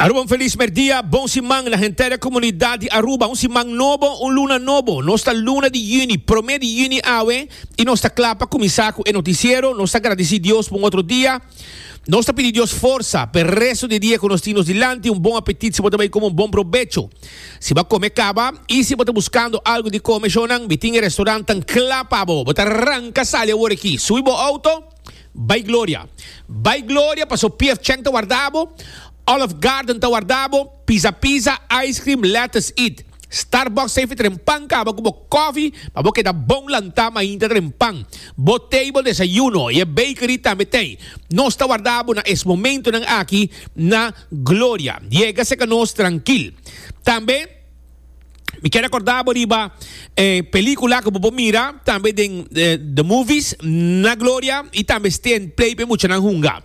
Aruba un felis merdia, bon siman na henter komunidat di Aruba. Un siman nobo, un luna nobo. Nos ta luna di yüni, promé di yüni awe i nos ta kla pa kuminsá ku e notisiero. Nos ta gradisí Dios pa un otro dia. Nos ta pidi Dios forsa p'e resto di e dia ku nos tin nos dilanti. Un bon apetit si bo ta bai kome un bon probecho. Si bo a kome kaba i si bo ta buskando algu di kome, shonnan mi tin e restorantnan kla pa bo. Bo ta ranka sali awor aki, subi bo outo. Bai gloria. Bai gloria paso pf cheng ta warda bo, olive garden ta warda bo, pizza pizza, ice cream, lettuce eat. Starbucks ta efi tren pan caba cu bo coffee pa bo keda bon lanta mainta tren pan. Bo table desayuno y e bakery tambe tey. Nos ta warda bo na es momentonan aki na gloria. Yega seca nos trankil. Tambe. Mi ke rekorda bo riba e pelikula ku bo por mira tambe den The Movies na Gloria i tambe Steen Play pa e muchanan hunga.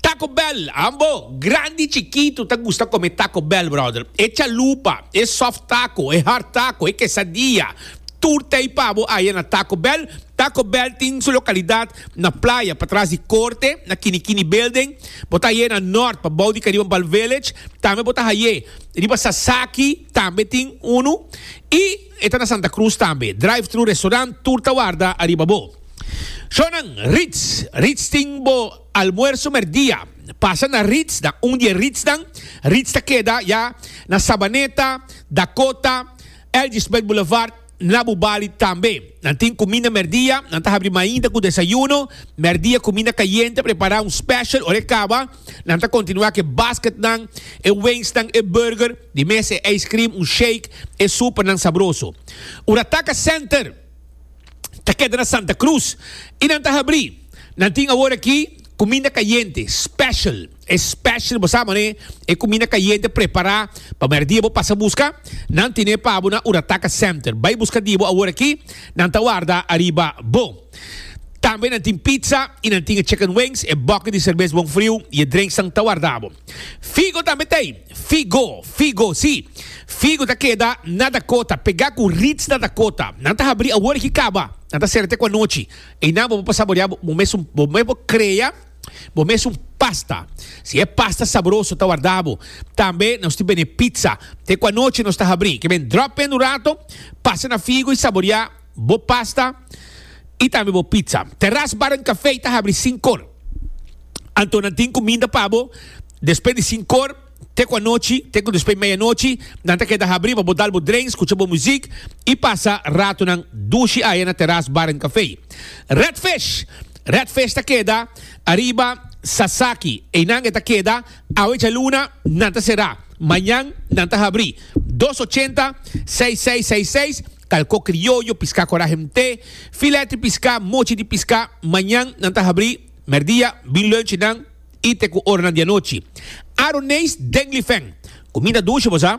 Taco Bell, ambo, grandi chikitu ta gusta kome Taco Bell, brother. E chalupa, e soft taco, e hard taco, e quesadilla, tur ta ei pa bo aya na Taco Bell. Taco Bell tin su lokalidat na playa patras di korte, na Kini Kini Building. Bo ta hai'é na Nort, pa bou di Kariba Bal Village. Tambe bo ta hai'é. Riba Sasaki tambe tin unu y e ta na Santa Cruz tambe. Drive thru restaurant tur ta warda ariba bo. Shonan, Ritz, Ritz tin bo almuerso merdia. Pasa na Ritz na un di e Ritznan. Ritz ta keda ya na Sabaneta, Dakota, Elgisbeth Boulevard. Na bo bali tambe nan tin kuminda mèrdia, nan ta habri mainta ku desayuno, mèrdia kuminda kayente prepará un special ora e kaba, nan ta kontinuá ku e basketnan, e wengsnan, e burger, di mes e ijskrim, un shake, e supernan sabroso. Ora Taka Center ta keda na Santa Cruz i nan ta habri, nan tin aworakí kuminda kayente, special. Especially bo sa mane e cuminda cayente prepara pa merdia bo pasa busca nan tine pa bo na Urataca Center bay busca di bo awor aki nan ta warda ariba bo tambe nan tin pizza y nan tin e chicken wings e bucket di cerbes bon friu y e drinks nan ta warda bo Figo tambe ta ey Figo Figo si Figo ta keda na Dakota pega cu Ritz na Dakota nan ta habri awor aki caba nan ta cera te cu anochi eynan bo bo pa saborea bo mesun bo me bo crea. Bo mes un pasta. Si e pasta sabroso ta warda bo. Tambe nos tin bende pizza. Te ku anochi nos ta habri. Ke ben drop in un rato, pasa na figu i saborea bo pasta i tambe bo pizza. Terras Bar en Cafe ta habri sin kor. Anto nan tin kuminda pa bo despues di sin kor. te ku anochi, te ku despues meyanochi, nan ta keda habri pa bo dal bo drenks, kucha bo muzik i pasa ratonan dushi aya na teras Bar en Café. Red Fish! Red Fish ta keda ariba Sasaki. Einan e ta keda. Awe djaluna nan ta será. Mañan nan ta habri. Dos ochenta, seis seis seis seis, kalko krioyo, piská kora hemté, filèt di piská, mochi di piská. Mañan nan ta habri. Merdia, bin lunchi nan. i te ku oranan di anochi. Aroneis den Lifèn, kuminda dushi bo sa?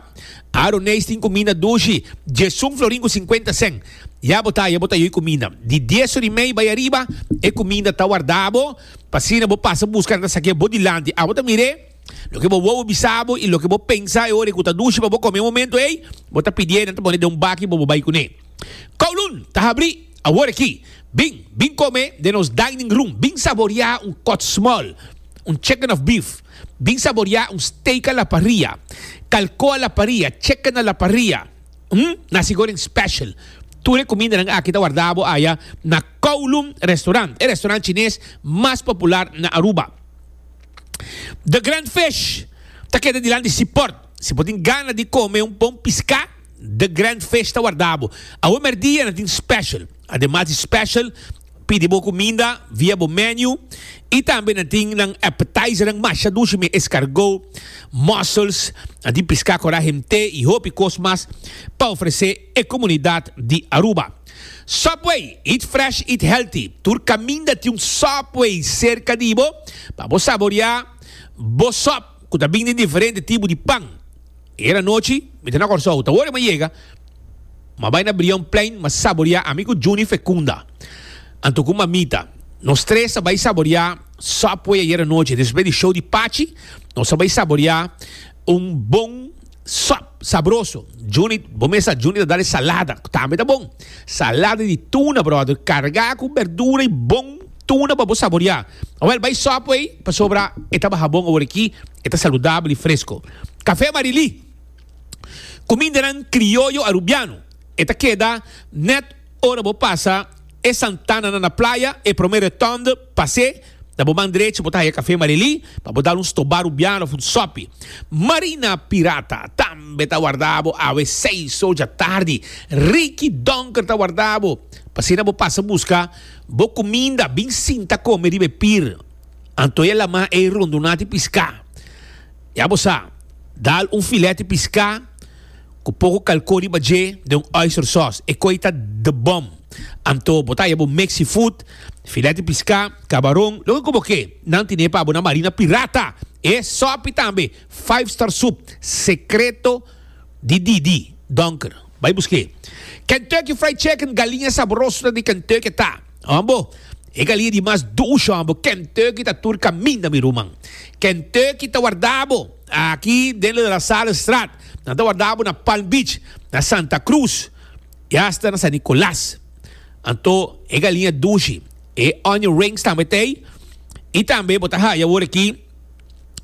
Aroneis tin kuminda dushi, djesun florin ku sinkuenta sèn. Ya bo ta, ya bo ta yoi kuminda. Di dies or i mei bai ariba, e kuminda ta warda bo, pa asina bo pasa buska nan ta sakia bo dilanti. Abo ta mir'é? Loke bo wou bo bisa bo, i loke bo pensa e ora ku ta dushi pa bo kome e momentu ei, bo ta pidié nan ta pon'é den un baki pa bo bai kuné. Kowloon ta habrí! Awor aki, bin, bin kome den nos dining room, bin saboriá un kòt smòl, un chicken of beef, bin saboriá un steak a la parrilla, kalkó a la parrilla, chicken a la parrilla, hm, nasi goreng special. Tur e kumindanan aki ta wardá bo aya na Kowloon Restaurant, e restaurant chines mas popular na Aruba. The Grand Fish ta keda dilanti Seaport. Si bo tin gana di kome un bon piská, The Grand Fish ta warda bo. Awe merdia nan tin special. Ademas di special, pidi bo cuminda via bo menu y tambe nan tin nan appetizernan masha dushi mi escargot, mussels, nan tin pisca cora hemte y hopi cos mas pa ofrece e comunidad di Aruba. Subway, eat fresh, eat healthy. Tur caminda tin un Subway cerca di bo pa bo saborea bo sop cu ta bini den diferente tipo di pan. E era nochi mi ta na Kòrsou. Ta wòrdu mi a yega, mi a bai na Brion Plein, mi a saboriá ami ku Junie Fecunda, anto ku Mamita. Nos tres a bai saboriá Subway ayera nochi. Despues di show di Pachi, nos a bai saboriá un bon sòp sabroso. Junie, bo mes sa, Junie ta dal e salada, ku tambe ta bon. Salada di tuna, bròder, kargá ku bèrdura i bon tuna pa bo saboriá. Awèl, bai Subway pasobra e ta baha bon awor aki, e ta saludabel i fresko. Kafé Marilí, ku mindenan krioyo arubiano, e ta keda nèt ora bo pasa e santananan na playa, e promé rotonde, pas'é, na bo man drechi bo ta haya Kafé Marilí, pa bo dal un stobá arubiano òf un sòpi. Marina Pirata tambe ta warda bo awe seis oja tardi, Ricky Donker ta warda bo, p'asina bo pasa buska bo kuminda, bin sinta kome riba e pir, anto e lamá ei rondunati piská. Ya bo sa, dal un filete piscá cu poco calcó riba dje den un oyster sauce. E coy ta the bomb! Anto bo ta haya bo mexi food, filete piscá, cabaron, loke cu bo ke. Nan tine pa bo na marina pirata! E sopi tambe, five star soup, secreto di Didi, Donker. Bay busque. Kentucky Fried Chicken, galiña sabroso ta di Kentucky ta. Ambo, e galia di mas dushi ambo, Kentucky ta tur kaminda mi ruman. Kentucky ta warda bo aki den La La Salle Straat, nan ta warda bo na Palm Beach, na Santa Cruz y hasta na San Nicolas. Anto e galia dushi, e onion rings tambe ta ey y tambe bo ta haya awor aki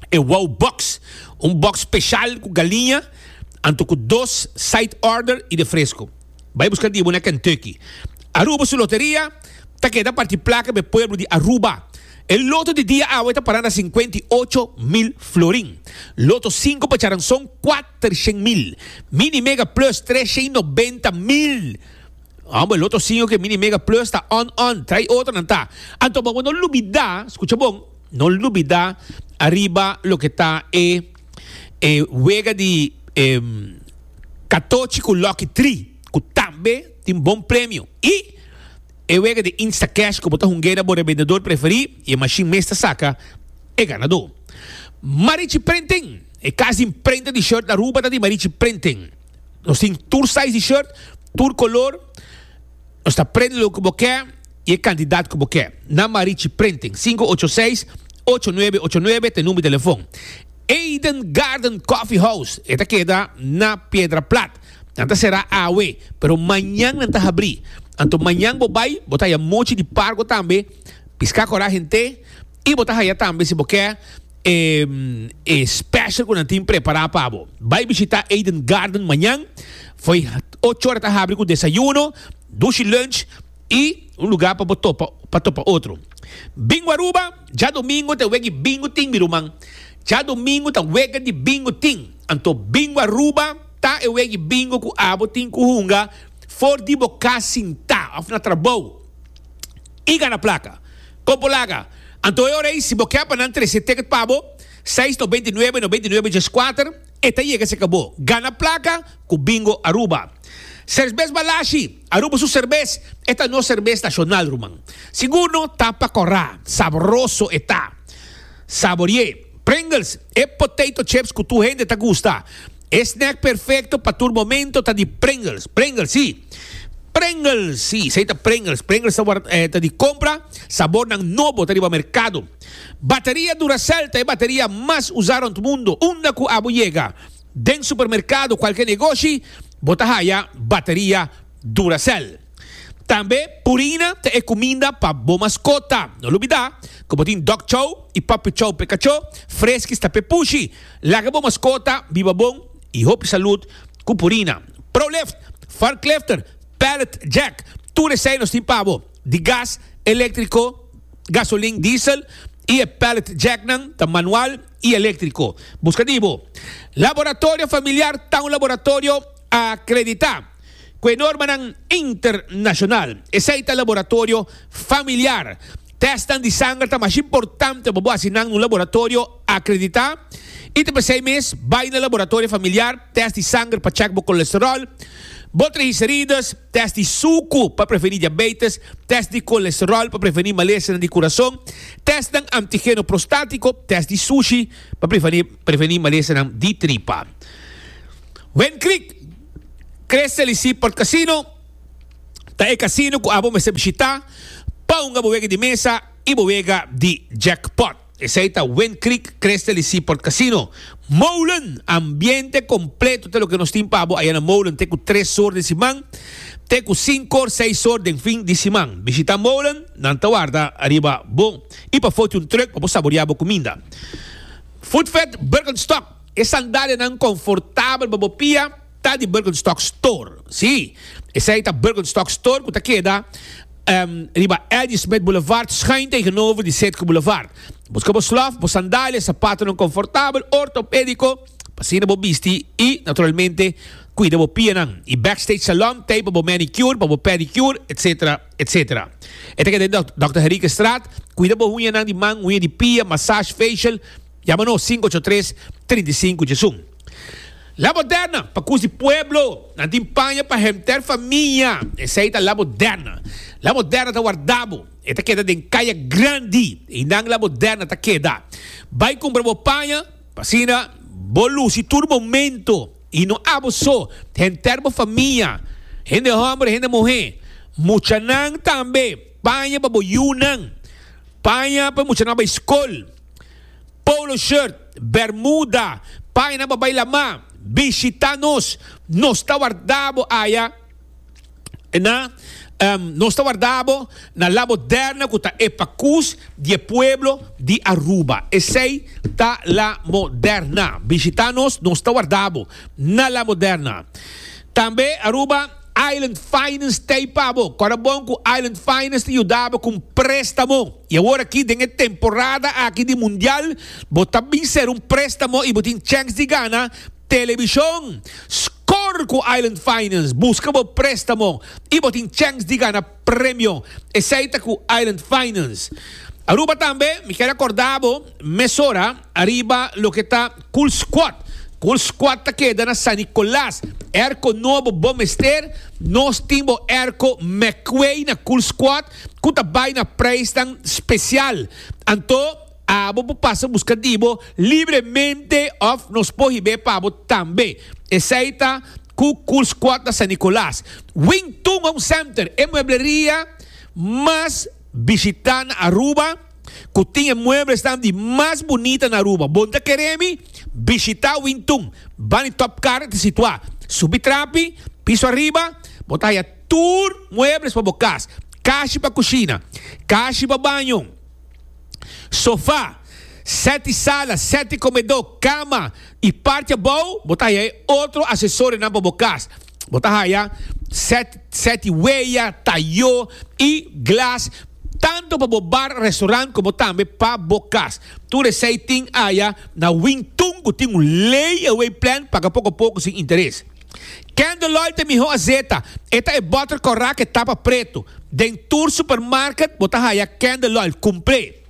e wow box, un box special cu galia, anto cu dos side order y de fresco. Bai buska dibu na Kentucky. Aruba su loteria ta keda parti plaka be pueblo di Aruba. E loto di dia awe ta para na sinkuenta i ocho mil florin. Loto sinku pa charanson kuater shen mil. Mini Mega Plus tres shen i nobenta mil. Homber, loto sinku ke Mini Mega Plus ta on on, trai otro nan ta. Anto bo bo no lubida, skucha bon, no lubida ariba loke ta e. e wega di e katochi ku Lucky Tree ku tambe tin bon premio i e wega di Instacash ku bo ta hungeda bo rebendedor preferí i e mashin mes ta saka e ganadó. Marichi Printing, E kas di imprenta di shirt Aruba ta di Marichi Printing. Nos tin tur size di shirt, tur kolor. Nos ta prende loke bo ke y e cantidad cu bo ke. Na Marichi Printing, sinku ocho seis, ocho nuebe ocho nuebe ta e number di telefon. Eden Garden Coffee House, e ta keda na Piedra Plat. Nan ta sera awe, pero mañan nan ta habri. Anto mañan bo bai, bo ta haya muchi di pargo tambe, pisca cora hente y bo ta haya tambe si bo ke. E e special cu nan tin prepara pa bo. Bay bishita Eden Garden mañan. Fo'i ocho ora ta habri cu desayuno, dushi lunch y un lugar pa bo topa pa topa otro. Bingo Aruba, Djadomingo ta e week di Bingo tin mi ruman. Djadomingo ta wega di Bingo tin. Anto Bingo Aruba ta e week di Bingo cu abo tin cu hunga for di bo cas sinta of na trabou. I gana plaka. Kon por laga? Anto e ora ei, si bo ke pa nan trese ticket pa bo, seis nobenta i nuebe, nobenta i nuebe djes kuater, e ta yega cerca bo. Gana plaka cu Bingo Aruba. Sersbes Balashi, Aruba su serbes, e ta nos serbes nacional ruman. Sigur no ta pa cora, sabroso e ta. Saborié. Pringles, e potato chips cu tur hende ta gusta. E snack perfecto pa tur momento ta di Pringles. Pringles si! Pringles si! Esey ta Pringles. Pringles ta ward eh, ta di compra. Sabornan nobo ta riba mercado. Bateria Duracell ta e bateria mas usa rond mundo. Unda cu abo yega, den supermercado, cualkier negoshi, bo ta haya bateria Duracell. Tambe Purina ta e cuminda pa bo mascota. No lo bida cu bo tin Dog Chow y Puppy Chow p'e cacho, Friskies ta p'e pushi. Laga bo maskota biba bon i hopi salud ku Purina. Prolift, Forklifter, Pallet Jack, tur esei nos tin pa bo. Di gas, elektriko, gasolin, diesel, i e pallet jacknan ta manual i elektriko. Buska di bo. Laboratorio Familiar ta un laboratorio akreditá. ku e normanan internashonal. Esei ta laboratorio familiar. Tèstnan di sanger ta mas importante pa bo hasi nan na un laboratorio akreditá. I ta p'esei mes, bai na laboratorio familiar, tèst di sanger pa chèk bo kolesteròl, bo trihiserides, tèst di suku pa prevení diabeites, tèst di kolesteròl pa prevení malesenan di kurason, tèstnan antigeno prostátiko, tèst di sushi pa prevení malesenan di tripa. Wen Creek. Crystal y Seaport Casino ta e casino cu abo mester bishita pa hunga bo wega di mesa y bo wega di jackpot. Esey ta Wind Creek Crystal y Seaport Casino, Molen. Ambiente completo ta loke nos tin pa bo aya na Molen te cu tres or den siman te cu cinco or, seis or den fin di siman. Bishita Molen, nan ta warda riba bo y pa foti un truck pa bo saborea bo cuminda. Food Fed Birkenstock. E sandalianan confortabel pa bo pia ta di Birkenstock Store. Sí, esei ta Birkenstock Store cu ta keda riba Ladysmith Boulevard schuin tegenover di Setco Boulevard. Busca bo slof, bo sandalia, sapatonan confortabel, ortopedico, pa asina bo bisti y, naturalmente, cuida bo pianan. Y Backstage Salon t'ey pa bo manicure, pa bo pedicure, etc. Etc. E ta keda den Doctor Henriquez Straat. Cuida bo uñanan di man, uña di pia, massage, facial. Yama nos sinku ocho tres trinta i sinku Djesun. La moderna pa kus di pueblo nan tin paña pa henter famia, esei ta la moderna. La moderna ta warda bo, e ta keda den kaya grandi i nan la moderna ta keda. Bai kumpra bo paña pa asina bo lusi tur momento i no abo so, henter bo famia, hende hòmber, hende muhé, muchanan tambe, paña pa bo yunan, paña pa e muchanan bai skol. Polo shirt, bermuda, paina pa bai lamá, bishitá nos, nos ta warda bo aya na, nos ta warda bo na La Moderna ku ta e pakus di e pueblo di Aruba. Esei ta La Moderna. Bishitá nos, nos ta warda bo na La Moderna. Tambe Aruba. Island Finance ta ei pa bo. Kòrda bon ku Island Finance ta yuda bo ku un préstamo. I awor aki den e temporada aki di Mundial bo ta bin ser un préstamo i bo tin chèks di gana telebishon. Skor ku Island Finance, buska bo préstamo i bo tin chèks di gana. Premio esei ta ku Island Finance Aruba tambe. Mi kier akorda bo mesora ariba loke ta Cool Squad. Cool Squad ta keda na San Nicolas. Airco nobo bo mester. Nos tin bo airco McQuay na Cool Squad ku ta bai na preisnan spesial. Anto abo por pasa buska di bo libremente òf nos por hib'é pa bo tambe. Esei ta. Ku Cool's Quarta San Nicolas, Wing Tun Home Center, e muebleria mas bishitá na Aruba, ku tin e mueblesnan di mas bunita na Aruba. Bo ta kere mi? Bishitá Wing Tun. Ban di Top Car e ta situá. Subi trapi, piso ariba, bo ta haya tur muebles pa bo kas, kashi pa kushina, kashi pa baño. sofá, sèti sala, sèti komedó, kama i parti abou bo ta haya e otro asesorionan pa bo kas. Bo ta haya sèti weya, tayó i glas tantu pa bo bar, restorant komo tambe pa bo kas. Tur esei tin aya na Wing Tun ku tin un lei away plan paga poko a poko sin interes. Candeloy ta miho a zeta. E ta e botter kòrá ku e tapa pretu. Den tur supermarket bo ta haya Candeloy. Kumpl'é.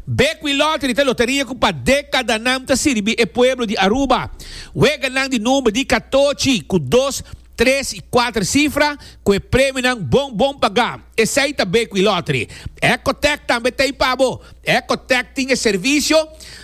Bekwí Lottery ta loteria ku pa dekadanan ta sirbi e pueblo di Aruba. Weganan di number di katochi ku dos, tres i kuater sifra ku e premionan bon bon pagá. Esei ta Bekwí Lottery. Ecotech tambe t'ei pa bo. Ecotech tin e servisio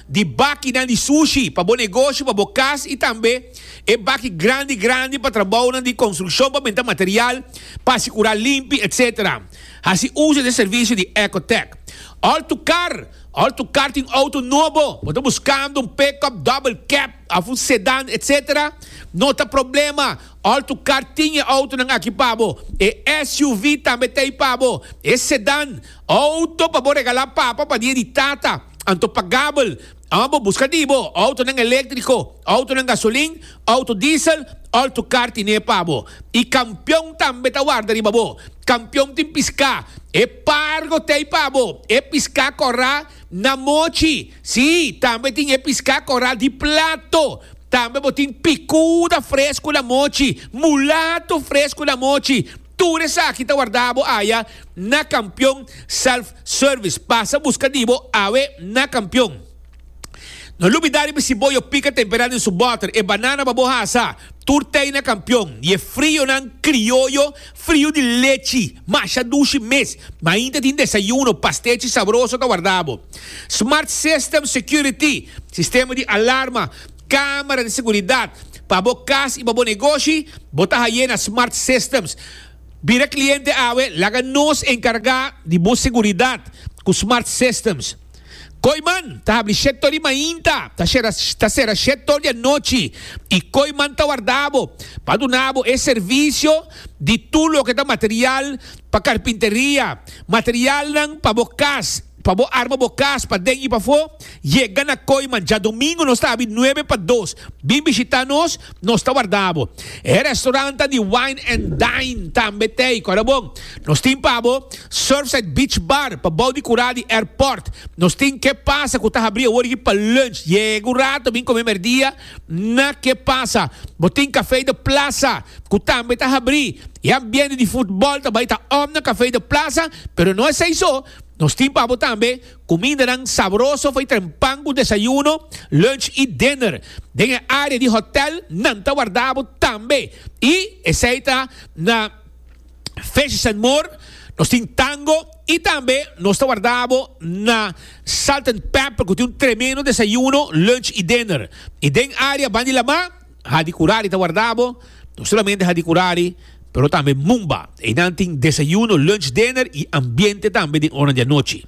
di bakinan di sushi pa bo negoshi, pa bo kas i tambe. E baki grandi grandi pa trabounan di konstrukshon pa benta material pa asigurá limpi etc. Hasi uso di e servisio di Ecotec. Òl tu kar Òl tu kar tin outo nobo, bo ta buskando un pickup double cab òf un sedan etc. No ta problema, òl tu kar tin e outonan aki pa bo. E SUV tambe ta ei pa bo. E sedan, outo pa bo regalá papa pa dia di tata, anto pagabel. Amo bo buska di bo outonan eléktriko, outonan gasolin, outo diesel, òlto kar tin'é pa bo. I kampion tambe ta warda riba bo. Kampion tin piská, e pargo t'ei pa bo, e piská kòrá na mochi. Sí, tambe tin e piská kòrá di plato. Tambe bo tin pikuda fresku na mochi, mulato fresku na mochi. Tur esaki ta wardá bo aya na Kampion Self Service. Pasa buska di bo awe na Kampion. No lubidá riba si bo yo pika temperá den su bòter. E banana pa bo hasa tur tei na Kampion. Di e frionan krioyo, frio di lechi, masha dushi mes. Ma ainda tin desayuno, pastechi sabroso ta wardá bo. Smart System Security, sistema di alarma, Camera di seguridad pa bo cas y pa bo negoshi, bo ta haye na Smart Systems. Bira cliente awe, laga nos encarga di bo seguridad cu Smart Systems. Kooiman ta habri shete tor di mainta, ta cera shete tor di anochi y Kooiman ta warda bo pa duna bo e servicio di tur loke ta material pa carpinteria, materialnan pa bo cas, pa bo arma bo cas paden y pafo. Yega na Coima djadomingo nos ta abi nuebe pa dos. Bin bishita nos, nos ta warda bo. E restaurant ta di wine and dine tambe t'ey, ku ora bon. Nos tin pa bo Surfside Beach Bar pa bou di kurá di airport. Nos tin Ke Pasa ku ta habri awor aki pa lunch. Yega un rato bin kome merdia na Ke Pasa. Bo tin Café de Plaza ku tambe ta habri. E ambiente di futbol ta bai ta òm na Café de Plaza, pero no esei so, nos tin pa bo tambe. Kumindanan sabroso for tren pan ku desayuno, lunch i dinner. Den e área di hotèl nan ta warda bo tambe. I esei ta na Fishes and More, nos tin Tango i tambe nos ta warda bo na Salt and Pepper ku tin un tremendo desayuno, lunch i dinner. I den área band'i lamá Hadi kurari ta warda bo? No solamente hadi kurari, pero tambe mumba. Einan tin desayuno, lunch, dinner y ambiente tambe den oranan di anochi.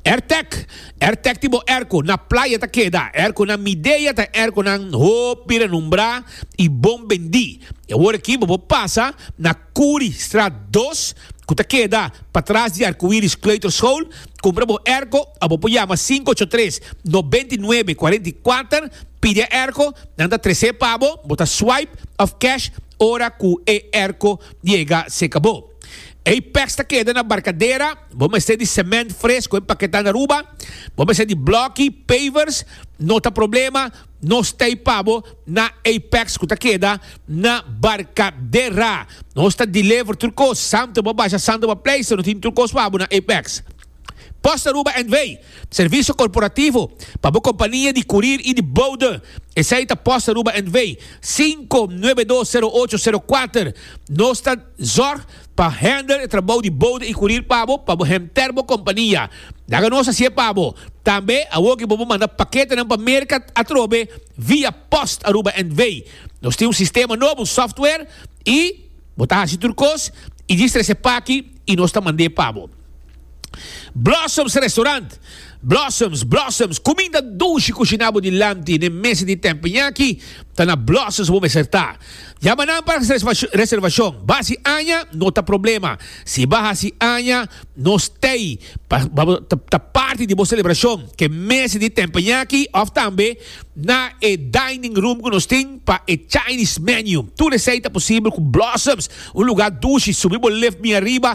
Airtec! Airtec tin bo airco, na playa ta keda, airco na Midea ta airconan hopi renombrá y bon bendí. E awor aki bo por pasa na. Kuri, Straat dos, ku ta keda patras di Arkoiris Kleuterschool, kumpra bo Erko, a bo por yama sinku ocho tres, nobenta i nuebe, kuarenta i kuater, pidi a Erko, nan ta tres'é pa bo, bo ta swipe of cash ora ku e Erko yega serka bo. Ei peks ta keda na barkadera, bo mester di sement fres ku e paketá na Aruba, bo mester di blòki, pavers, no ta problema, Nos ta ei pa bo na Apex ku ta keda na Barcadera. Nos ta deliver tur kos, Santa bo a basha, Santa bo a pleisa, nos tin tur kos pa bo na Apex. Post Aruba NV. Servisio korporativo pa bo kompania di kurir i di boude. Esei ta Post Aruba NV. sinku nuebe dos sero ocho sero kuater. Nos ta. Zorg pa hender e trabou di bouda i kurir pa bo, pa bo henter bo kompania. Laga nos hasié pa bo. Tambe, awor ki bo por manda paketenan pa Merka atrobe via post Aruba NV. Nos tin un sistema nobo, software, i bo ta hasi tur kos i di strese p'aki i nos ta mand'é pa bo. Blossoms Restaurant Blossoms, Blossoms, kuminda dushi kushinabo di lamti n'e mesa di Tempenyaki ta na Blossoms bo mester ta. Yama nan pa reservashon. Basi aña no ta problema. Si ba hasi aña, no stay pa ta parti di bo selebrashon k'e mesa di Tempenyaki òf tambe na e dining room ku nos tin pa e Chinese menu. Tur esei ta posibel ku Blossoms, un lugá dushi, subi bo lift miariba,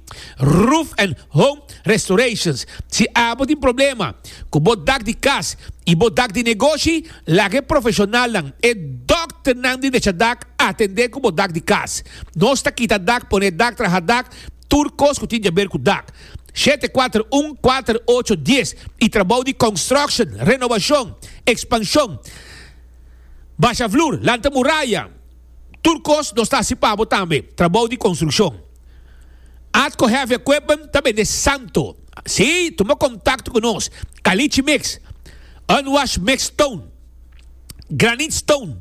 Roof and Home Restorations, Si a bo tin problema ku bo dak di kas i bo dak di negoshi, laga e profeshonalnan, e dòkternan di desha dak, atendé ku bo dak di kas. Nos ta kita dak, pone dak, traha dak, tur kos ku tin djaber ku dak. Shete kuater un kuater ocho dies i trabou di konstruksjon, renobashon, ekspanshon, basha flur, lanta muraya. Tur kos nos ta hasi pa bo tambe trabou di konstrukshon. Atco Heavy Equipment ta bende santo. Sí, tuma kontakto ku nos. Kalichi mix, unwashed mixed stone, granite stone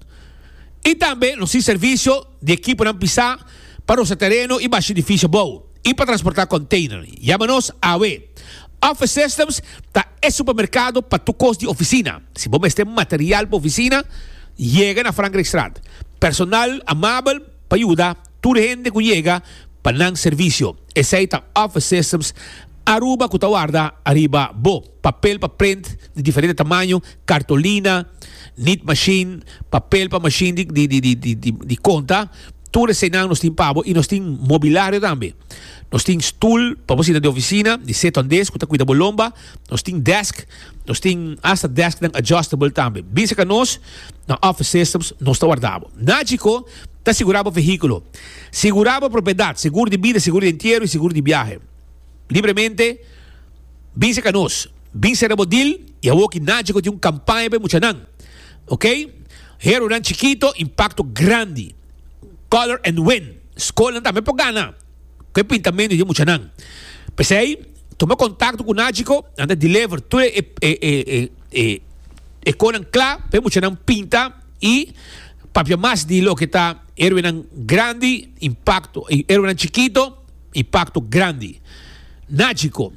i tambe nos tin servisio di ekiponan pisá pa rosa tereno i basha edifisio abou. y pa transporta container. Yama nos awe. Office Systems ta e supermercado pa tur cos di oficina. Si bo mester material pa oficina, yega na Frankrijkstraat. Personal amabel pa yuda tur hende cu yega pa nan servicio. Esey ta Office Systems Aruba cu ta warda ariba bo. papel pa print di diferente tamaño, kartolina, nit mashin, papel pa mashin di di di di di di konta, tur eseinan nos tin pabo i nos tin mobilario tambe. Nos tin stul pa bo sina den ofisina di set hondez ku ta kuida bo lomba, nos tin desk, nos tin hasta desknan adjustable tambe. Bin serka nos, na Office Systems nos ta warda bo. Na Chicó ta sigurá bo vehíkulo. Sigurá bo propiedat, segur di bida, segur di entiero i segur di biahe. Libremente, Bin serka nos, bin sera bo dil i awor ki nadje ku tin un kampaña pa e muchanan. Ok. Heronan chikito, impakto grandi. Color and Win, skolnan tambe por gana ku e pintamentu di e muchanan. P'esei, tuma kontakto ku Nagico, nan ta deliver tur e e konan kla pa e muchanan pinta i papia mas di loke ta heroenan grandi, impakto, i heroenan chikito. E pacto grandi. Nagico.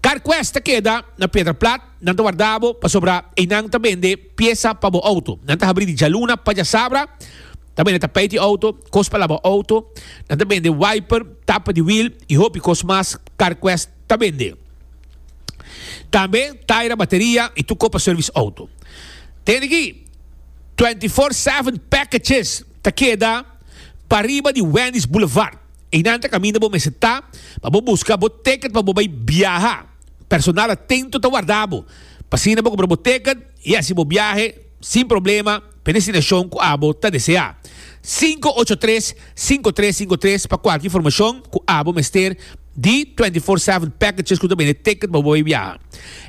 Carquest ta keda na Piedra Plat, nan ta warda bo pasobra einan ta bende piesa pa bo auto. Nan ta habri di djaluna pajasabra, ta bende tapijt di auto, cos pa laba auto, nan ta bende wiper, tapa di wiel y hopi cos mas Carquest ta bende. Tambe taira bateria y tur cos pa service auto. Tende aki, twenty four seven packetjes ta keda pariba di Wendy's Boulevard. Einan ta kaminda bo mester ta pa bo buska bo ticket pa bo bai biaha. Personal atento ta warda bo. P'asina bo kumpra bo ticket i hasi bo biahe sin problema pa e destinashon ku abo ta deseá. Sinku ocho tres, sinku tres sinku tres pa kualke informashon ku abo mester di twenty four seven packages ku ta bende ticket pa bo bai biaha.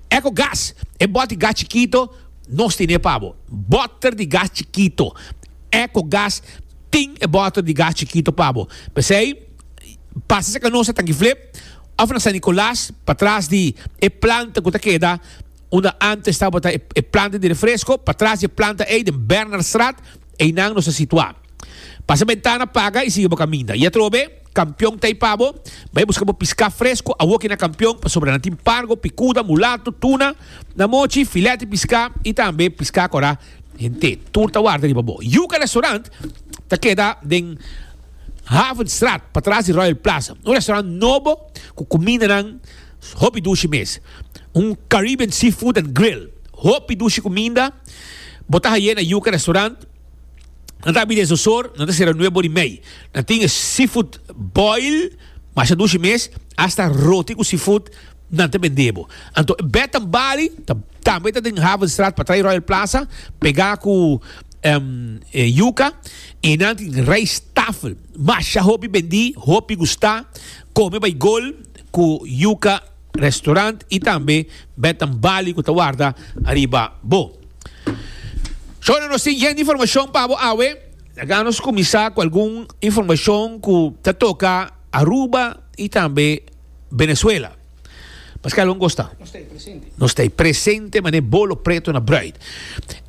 Echo Gas, e bòt di gas chikito nos tene pa bo. Bòter di gas chikito. Echo Gas. tin e bottle di gas chikito pa bo. P'esei, pasa sa canosa tanki flip of na San Nicolas, patras di e planta cu ta keda unda antes tabata e planta di refresco, patras di e planta ei den Bernardstraat, einan nos ta situa. Pasa bentana paga y sigui bo caminda. I atrobe, Kampion ta ei pa bo. Bai busca bo pisca fresco awoki na Kampion, pasobra nan tin pargo, picuda, mulato, tuna, namochi, filet di pisca y tambe pisca cora. Hende tur ta warda riba bo. Yuca Restaurant ta keda den Havenstraat, patras di Royal Plaza. Un restaurant nobo cu cumindanan hopi dushi mes. Un Caribbean seafood and grill. Hopi dushi cuminda bo ta haye na Yuca Restaurant. Nan ta abi den zozor, nan ta cera nueve bor di mei. Nan tin seafood boil, masha dushi mes, hasta roti cu seafood. nan ta bend'é bo. Anto e bed nan bali ta tambe ta den Havenstraat pa traai Royal Plaza pegá ku Yuka i nan tin rijsttafel masha hopi bendí hopi gustá kome bai gol ku Yuka Restaurant i tambe bed nan bali ku ta warda ariba bo. Shone nos tin yen di informashon pa bo awe laga nos kuminsá ku algun informashon ku ta toka Aruba i tambe. Venezuela. Mas kalo nos ta? Nos ta presente mané bolo preto na bruid.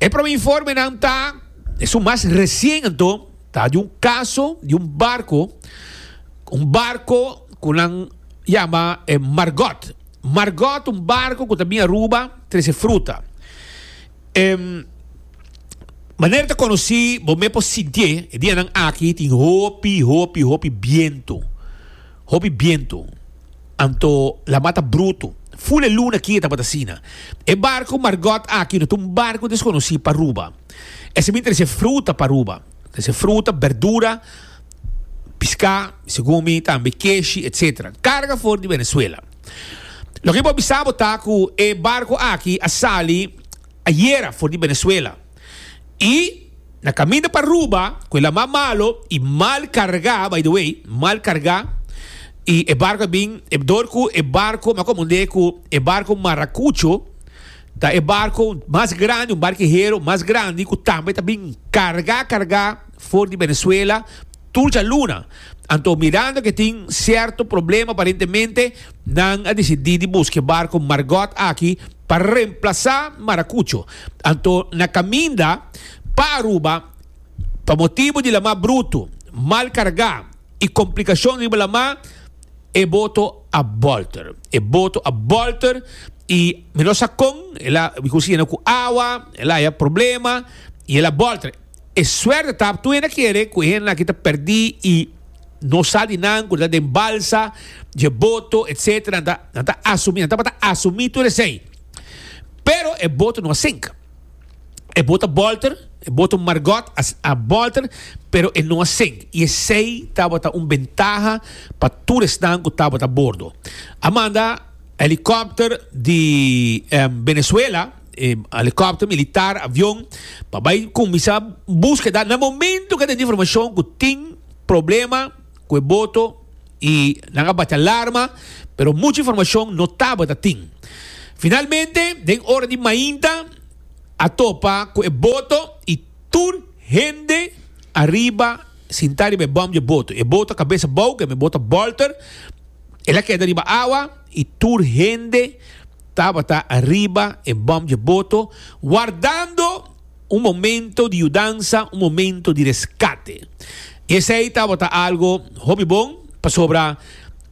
E prome informe nan ta, es un mas resien anto, ta di un kaso di un barko, un barko ku nan yama e Margot. Margot un barko ku ta bin Aruba trese fruta. E manera ta konosí, bo me por sintié, e dianan aki tin hopi, hopi, hopi bientu. Hopi bientu, anto lama ta brutu. Fule luna kia tabata asina. E barku Margot aki no ta un barku deskonosí pa Aruba. Esei mi trese fruta pa Aruba. Trese fruta, berdura, piská, segun mi, tambe keshi, etcetera. Karga for di Venezuela. Loke mi por bisa bo ta ku e barku aki a sali ayera for di Venezuela. Y na caminda pa Aruba cu e lama malo y mal carga, by the way, mal carga, y e barco a bin, e door cu e barco, m'a comundé cu e barco Maracucho ta e barco mas grandi, un barquihero mas grandi cu tambe ta bin carga, carga for di Venezuela, tur djaluna. Anto mirando ke tin sierto problema aparentemente nan a decidí di busque barco Margot aki pa reemplazá Maracucho. Anto na caminda pa Aruba pa motibu di la mar bruto, mal cargá y complicacion riba la mar e boto a bolter. E boto a bolter y mi no sa con el a bicunciona cu awa, el a haya problema y el a bolter. E suerte ta ap tuena kere ku e hende aki ta pèrdí i no sa di nan ku ta den balsa dje boto etc. Nan ta nan ta asumí, nan tabata asumí tur esei. Pero e boto no a sink. E boto a bòlter, e boto Margot a a bòlter, pero e no a sink. I esei tabata un bentaha pa tur esnan ku tabata a bordo. A manda helikòpter di Benezuela. helicopter militar, avion, pa bai cuminsa búsqueda. Na momento que den informacion cu tin problema cu e boto y nan a bati alarma, pero mucha informacion no tabata tin. Finalmente, den ora di mainta a topa cu e boto y tur hende ariba sinta riba e bom di e boto. E boto a cabesa bou, kende boto a bolter, el a keda riba awa. I tur hende tabata ariba e bòm dje boto, wardando un momento di yudansa, un momento di reskate. Esei tabata algu hopi bon, pasobra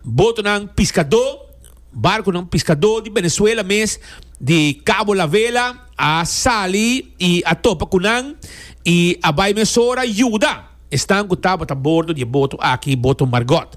botonan piskadó, barkunan piskadó di Benezuela mes, di Cabo La Vela, a sali i a topa ku nan i a bai mesora yuda esnan ku tabata bordo di e boto aki, boto Margot.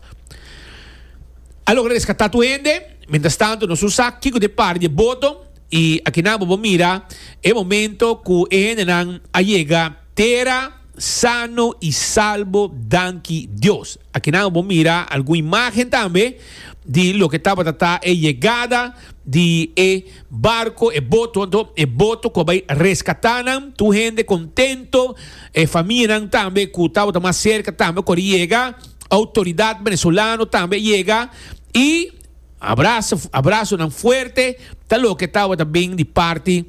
A logra rescatá tur hende. Mientras tanto nos usa kico di e par di e boto y akinan bo por mira e momento cu e hendenan a yega tera sano y salbo, danki Dios. Akinan bo por mira algun imagen tambe di loke tabata ta e yegada di e barco, e boto anto, e boto cu a bay rescatá nan. Tur hende contento, e famianan tambe cu tabata mas cerca tambe a cor yega. Outoridat Benesolano tambe yega y abraso abrasonan fuerte ta loke tabata bin di parti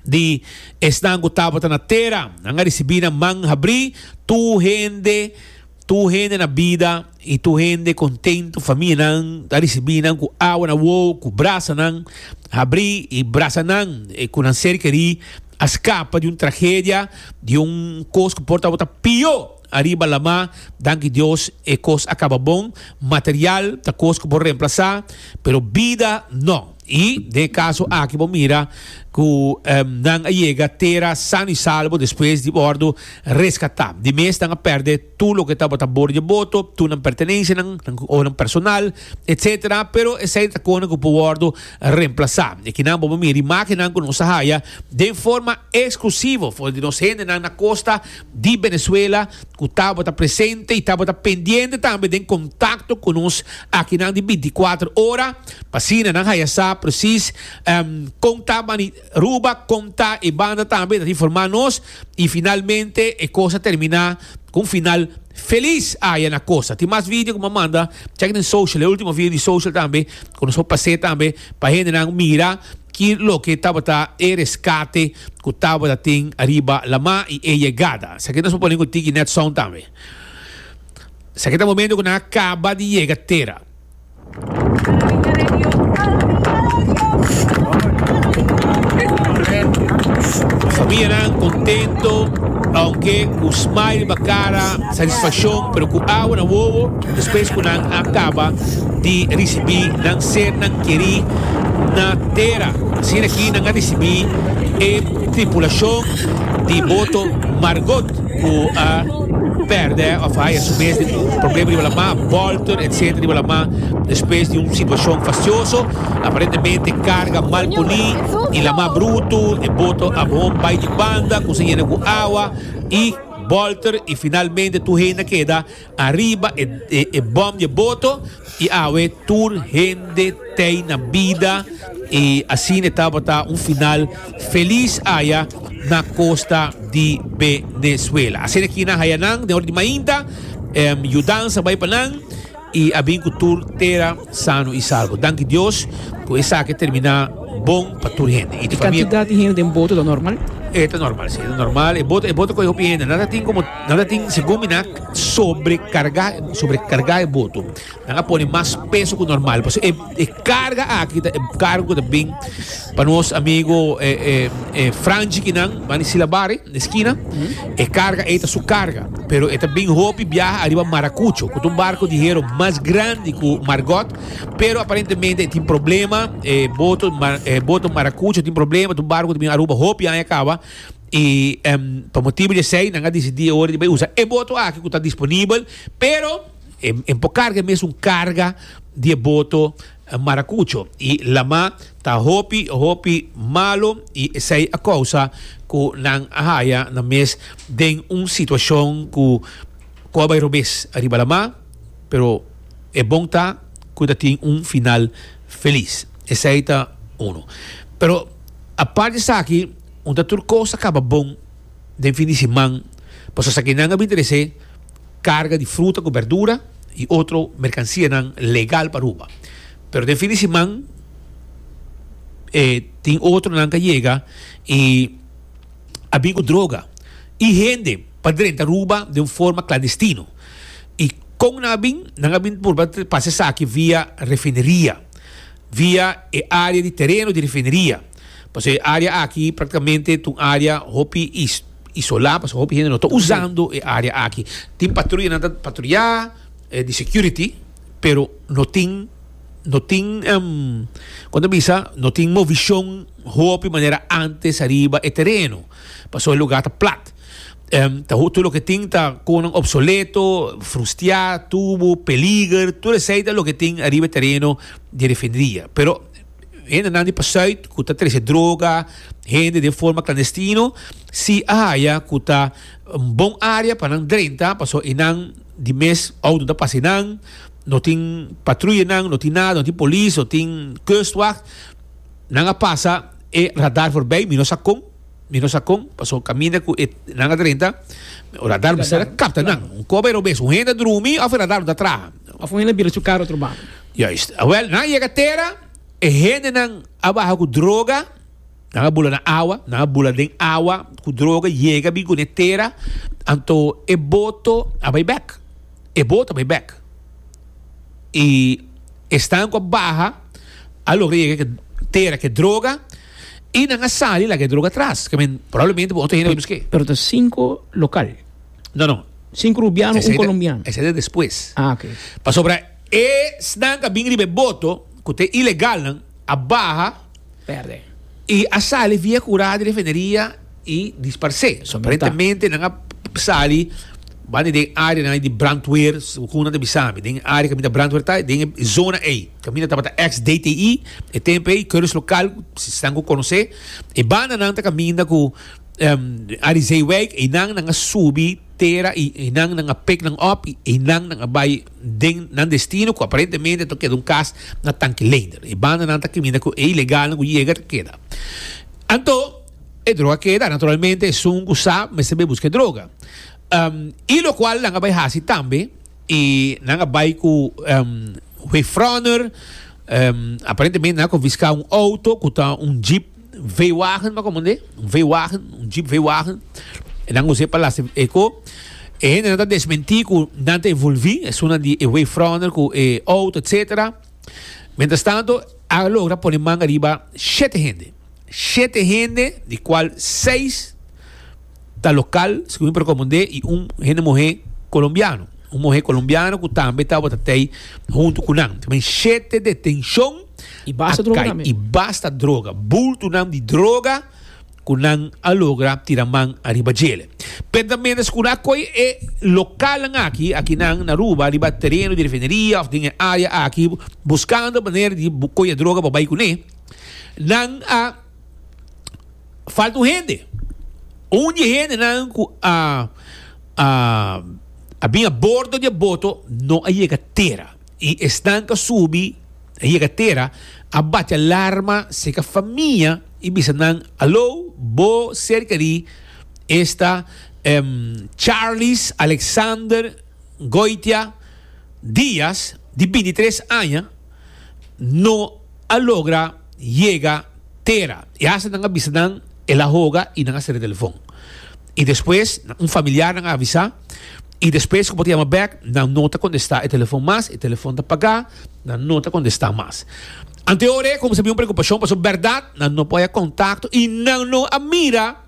di esnan cu tabata na tera. Nan a ricibi nan man habri tur hende tur hende na bida y tur hende contento famianan a ricibi nan cu awa na wou cu brasanan habri y brasanan cu nan ser keri a scapa di un tragedia di un cos cu por tabata pior. Ariba Lamá, Danki Dios, e kos a kaba bon. Material ta kos ku por remplasá, pero bida nò. I den e kaso aki bo mira ku nan a yega tera sano i salbo despues di wòrdu reskatá. Di mes nan a pèrdè tur loke tabata bor dje boto, tur nan pertenenshanan, nan konan personal, etsetera, pero esei ta kosnan ku por wòrdu remplasá. I aki nan bo por mira di makinan ku nos a haya den forma eksklusivo for di nos hendenan na kosta di Venezuela cu tabata presente y tabata pendiente tambe den contacto cu nos akinan di binti y kuater ora pa asina nan haya sa precies con ta bani Aruba, con ta e banda tambe ta informa nos y finalmente e cosa termina cu un final feliz aya na Costa. Tin mas video cu bo a manda, check den social, e ultimo video di social tambe cu nos por pase tambe. Pa hendenan mira ki loke tabata e reskate ku tabata tin ariba lama i e yegada. Esaki nos por pone ku tiki nèt sòun tambe. Esaki ta momentu ku nan a kaba di yega tera. Famianan kontento, ounke ku smile riba kara, satisfakshon, pero ku awa na wowo. Despues cu nan a caba di ricibi nan ser nan queri na tera, asina aki nan a ricibi e tripulacion di boto Margot cu a perde of a haya su mes den un problema riba la mar, bolter etcetera riba la mar despues di un situacion fastioso, aparentemente carga mal poni y la mar bruto, e boto a bon bay di banda, cuminsa yena cu awa y bolter y finalmente tur hende a keda. Ariba e bom dje boto y awe tur hende tey na bida y asina e tabata un final feliz aya na costa di Venezuela. Asina ki nan haya nan den ora di mainta, yudansa bay pa nan y a bin cu tur tera Sano i salbo. Danki Dios cu esaki termina bon pa tur hende. E cantidad di hende den boto ta normal? E ta normal, si. E ta normal. E boto, e boto coge hopi hende. Nan a tin como, nan a tin, segun mi, nan a sobrecarga, sobrecarga e boto. Nan a pone mas peso cu normal. Pasobra e, e carga aki ta e cargo cu ta bin pa nos amigo e, e, e Franchi kinan, Manicila Bari. na eskina, e karga ei ta su karga, pero e ta bin hopi biaha ariba Marakucho, ku ta un barku di hero mas grandi ku Margot, pero aparentemente e tin problema, e boto e boto Marakucho tin problema, ta un barku ku ta bin Aruba hopi aña kaba, i em pa motibu di esei nan a disidí e ora di bai usa e boto aki ku ta disponibel, pero e e por karga e mes un karga di e boto. Maracucho y lama ta hopi hopi malo y esey a causa cu nan a haya nan mes den un situacion cu cu a bay robes ariba lama, pero e bon ta cu ta tin un final feliz. Esey ta uno. Pero apart di esaki un ta tur cos a caba bon. den fin di siman pasobra esaki nan a bin tresé karga di fruta ku bèrdura i otro merkansianan legal pa Aruba. Pero den fin di siman e tin otro nan ku a yega i a bin ku droga i hende pa drenta Aruba den un forma klandestino. I kon nan a bin? Nan a bin purba pasa esaki via refineria, via e área di tereno di refineria. Pasobra e área aki práktikamente ta un área hopi isolá, pasobra hopi hende no ta usando e área aki. Tin patruya, nan ta patruya di security, pero no tin, no tin, kon ta bisa, no tin movishon hopi manera ántes ariba e tereno, pasobra e lugá ta plat. Tur loke tin ta konan opsoleto, frustiá, tubu, peliger, tur esei ta loke tin ariba e tereno di refineria. Pero. Hendenan di Pasuit ku ta trese droga, hende den forma klandestino, si a haya ku ta un bon área pa nan drenta, pasobra e nan di mes outo ta pasa nan, no tin patruyanan, no tin nada, no tin polis, no tin kustwacht, nan a pasa e radar forbei, mi no sa kon, mi no sa kon, pasobra kaminda ku e nan a drenta, e radar mester a kapta nan, un koba e robes, un hende a drumi òf e radar no ta traha. Òf un hende a bira su karo otro banda. Juist. Awel, nan a yega tera, e hendenan a baha ku droga, nan a bula na awa, nan a bula den awa ku droga, yega bin kuné tera, anto e boto a bai bèk, e boto a bai bèk. I esnan ku a baha a logra yega ke tera ke droga i nan a sali laga e droga atras. Ke men, probablemente bo otro hende a bai busk'é. Pero ta sinku lokal? No, no. Sinku rubiano, un colombiano. Esei ta despues. Ah, ok. Pasobra. Esnan ku a bin riba e boto ku ta e ilegalnan a baha i a sali via kura di refineria i dispars'é. Aparentemente nan a sali banda den e áreanan di brandweer, segun nan ta bisa mi. Den e área kaminda brandweer ta, den e zona ei kaminda tabata eks DTI e tempu ei. Keuris lokal si esnan ku konos'é e bandanan ta kaminda ku Arizeiwijk einan nan a subi tera i einan nan a pik nan òp i einan nan a bai. den nan destino cu aparentemente ta keda un cas na tanki leider. E bandanan ta caminda cu e ilegalnan cu yega ta keda. Anto, e droga keda, naturalmente esun cu sa mester bay busca e droga. Um, y locual nan a bay haci tambe, y nan a bay cu um, wave runner, um, aparentemente nan a confisca un auto cu ta un jeep, Veewagen ta komo un veewagen, un jeep veewagen, e nan us'é pa lasa e ko. E hendenan ta desmentí ku nan ta envolví esunnan di e wavefronter ku e outo etsetera. Mientrastanto, a logra pone manga riba shete hende. Shete hende, di kual seis. ta local, segun mi por recomendé, y un hende muhe colombiano. Un muhe colombiano cu tambe tabata tey hunto cu nan. También shete detencion Y basta a droga cay. también. Y basta droga. Bultonan di droga cu nan a logra tira man ariba djele. Penta mientras cu nan a coy e localnan aki, aki nan na Aruba, riba tereno di refineria of den e area aki, buscando manera di bu coy e droga pa bay cune, nan a falta un hende. Un di hendenan ku a a a bin a bordo di e boto no a yega tera. I esnan ku a subi a yega tera a bati alarma seka famia i bisa nan, Alo, bo serka di esta Charlis Alexander Goitia Diaz di binti tres aña? no a logra yega tera. I hasta nan a bisa nan el a hoga i nan a sera e telefon. I despues un familiar nan a avisa i despues ku bo ta yama bèk nan no ta kontestá e telefon mas, e telefon ta pagá, nan no ta kontestá mas. Ante ora e kumsa bin un preokupashon pasobra bèrdat nan no por haya kontakto i nan no a mira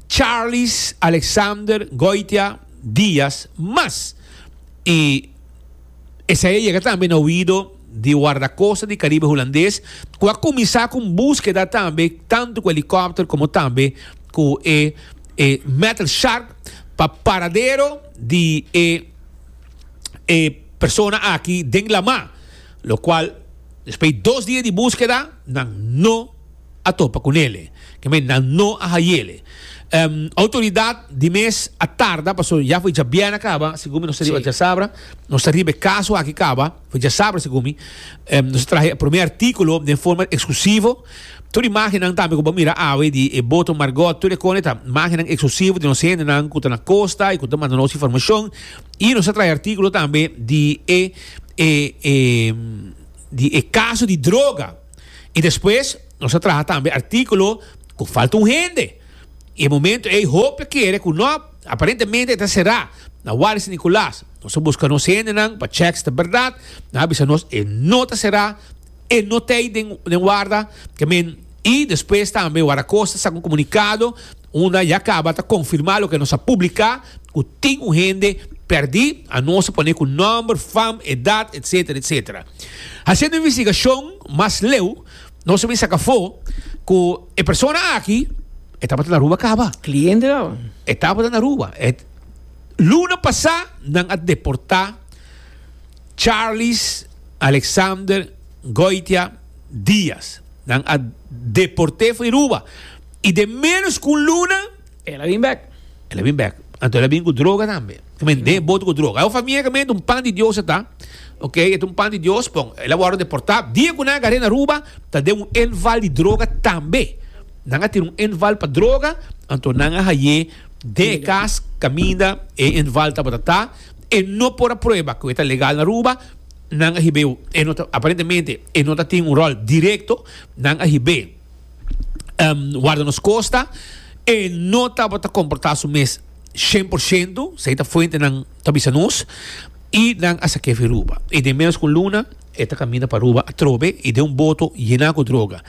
Charles Alexander Goitia Diaz mas. I. Esei a yega tambe na oido di Wardakosta di Karibe Hulandes ku a kuminsá ku un búskeda tambe tantu ku elikòpter komo tambe ku e e metal shark pa paradero di e e persona aki den lamá lokual despui dos dia di búskeda nan no a topa cu nele. Kemenda no a hayele. Autoridad di mes a tarda pasobra ya foi djabiena caba, segun mi nos ta riba djasabra, nos ta riba e caso aki caba, foi djasabra segun mi, nos a traha e prome articulo den forma exclusivo, tur e magennan tambe cu bo a mira awe di e boto Margot, tur e cone ta magennan exclusivo di nos hendenan cu ta na costa y cu ta manda nos informacion y nos a traha e articulo tambe di e di e caso di droga. I despues nos a traha tambe artíkulo ku falta un hende. I e momentu ei hopi kere ku no, aparentemente e ta será na Wal di San Nicolas. Nos a buska nos hendenan pa chèks ta bèrdat. Nan a bisa nos e no ta será, e no t'ei den warda. Ke men, i despues tambe Waracosta sak un komunikado. Unda ya caba ta confirma loke nos a publica cu tin un hende perdi, a nos a pone cu nomber, fam, edad, etc. Etc. Haciendo investigacion mas leu nos a bin saca afo cu e persona aki e tabata na Aruba caba. Cliente caba. E tabata na Aruba. E luna pasa nan a deporta Charles Alexander Goitia Diaz. Nan a deporte for di Aruba. I den ménos ku un luna. El a bin bèk. El a bin bèk. Anto el a bin ku droga tambe. E mende e bota ku droga. Awor famia e kamente un pan di Dios a ta. Ok, e ta un pan di Dios. Bon, el a wòrdu deportá. Dia ku nan a gar'é na Aruba, ta den un enval di droga tambe. Nan a tira un enval pa droga, anto nan a hai'é den e kas kaminda e enval tabata ta. E no por a prueba ku e ta legal na Aruba. Nan a hib'é, e no ta, aparentemente e no ta tin un ròl direkto. Nan a hib'é. em, warda nos kosta, e no tabata komportá su mes shen por shento, sei ta fuentenan ta bisa nos, i nan a sak'é fen Ruba. I den ménos ku un luna e ta kaminda pa Ruba atrobe i den un boto yená ku droga.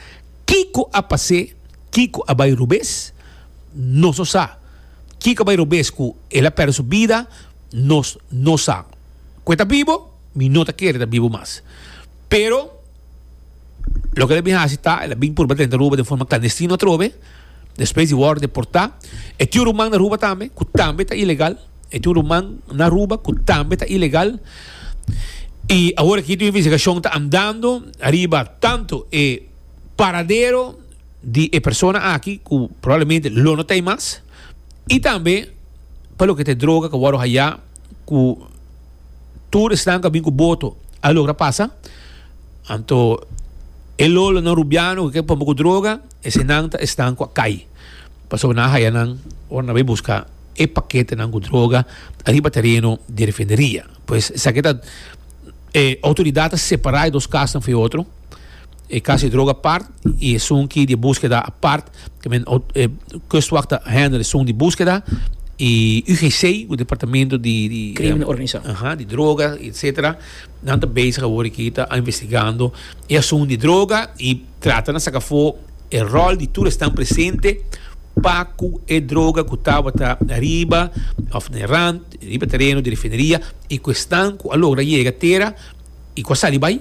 Kiko a pas'é? Kiko a bai robes? Nos no sa. Kiko a bai robes ku el a pèrdè su bida? Nos no sa. Ku e ta bibo? Mi no ta kere ta bibo mas. Pero. Loke el a bin hasi ta, el a bin purba drenta Aruba den forma klandestino atrobe, despues di wòrdu deportá. E tin un ruman na Aruba tambe ku tambe ta ilegal, e tin un ruman na Aruba ku tambe ta ilegal. I awor aki tin un investigashon ta andando ariba tantu e paradero di e persona aki ku probablemente lo no ta ei mas, i tambe pa loke ta e droga ku a wòrdu hayá. ku tur esnan ku a bin ku boto a logra pasa. Anto e lolonan rubiano ku ke pon poku droga, esenan ta esnan ku a kai. Pasobra nan a haya nan ora nan bai buska e paketenan ku droga ariba tereno di refineria. Pues esaki ta e outoridat ta separa e dos kasnan fu e otro. e caso di droga apart y esun ki di buskeda apart I mean e kustwacht ta handle esun di buskeda y UGC ku departamento di Crimen organizado aha di droga etcetera nan ta bezig awor aki ta investigando e asun di droga y tratando saka afo e rol di tur esnan presente pa ku e droga ku tabata riba of na e rant riba tereno di refineria y ku esnan ku a logra yega tera y ku a sali bai.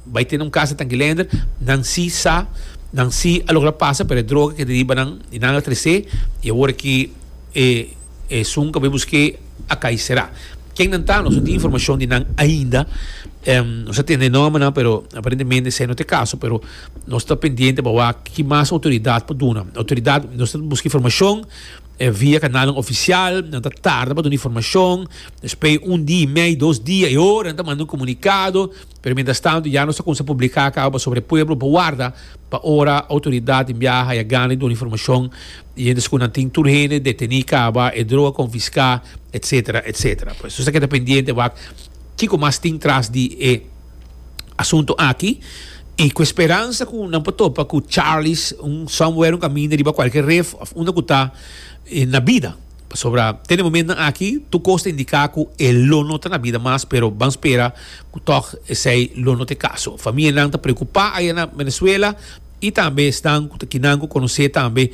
Bai tene un kasa tankilender, nan si sa, nan si a logra pasa, pero e droga keda riba nan i nan a tresé, i awor aki e e sun ku bai busk'é a kai será. Ken nan ta? Nos no tin informashon di nan ainda, nos a tende e nòmbernan pero aparentemente esei no ta e kaso, pero nos ta pendiente pa wak ki mas outoridat por duna. Outoridat, nos ta buska informashon via kanalnan ofisial, nan ta tarda pa duna informashon, despoi un di i mei, dos dia i ora nan ta manda un komunikado. Pero mientras tanto ya nos ta cuminsa publica caba pasobra e pueblo por warda pa ora autoridad tin biaha haya gana di duna informacion di ente segun nan tin tur hende deteni caba, e droga confisca, etc. Etc. Pues nos ta keda pendiente wak kico mas tin tras di e asunto aki y cu e speransa cu nan por topa cu Charlie's un somewhere un caminda riba cualkier ref of unda cu ta na bida. Pasobra te den momentnan aki tur kos ta indiká ku e lo no ta na bida mas, pero ban spera ku tòg esei lo no ta e kaso. Famianan ta preokupá aya na Venezuela i tambe esnan ku ta kinan ku konos'é tambe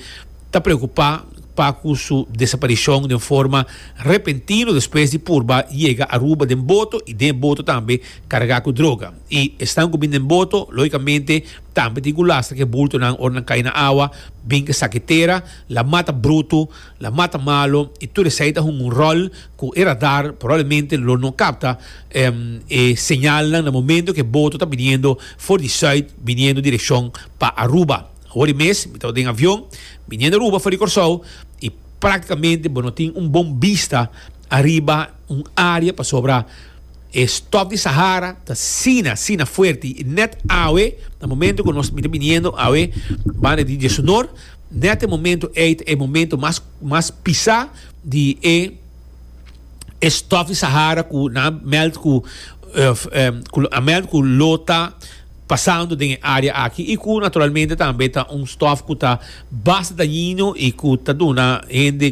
ta preokupá pa ku su desaparishon den forma repentino despues di purba yega Aruba den boto i den boto tambe kargá ku droga. I esnan ku bin den boto lógikamente tambe tin ku lastra ku e bultonan ora nan kai na awa bin ke saketera la mata brutu. La mata malo y tur esey ta hunga un rol cu e radar probablemente lo no capta e señalnan na momento cu e boto ta biniendo for di Zuid biniendo direccion pa Aruba. Awor mes mi tawata den avion biniendo Aruba for di Corsou y practicamente bo no tin un bon bista ariba un area pasobra e stof di Sahara ta asina asina fuerte y net awe na momento cu nos mi ta biniendo awe banda di Diezonor Net e momento ey ta e momento mas mas pisa di e e stof di Sahara cu nan a meld cu cu lo a meld cu lo ta pasando den e area aki y cu naturalmente tambe ta un stof cu ta basta dañino y cu ta duna hende.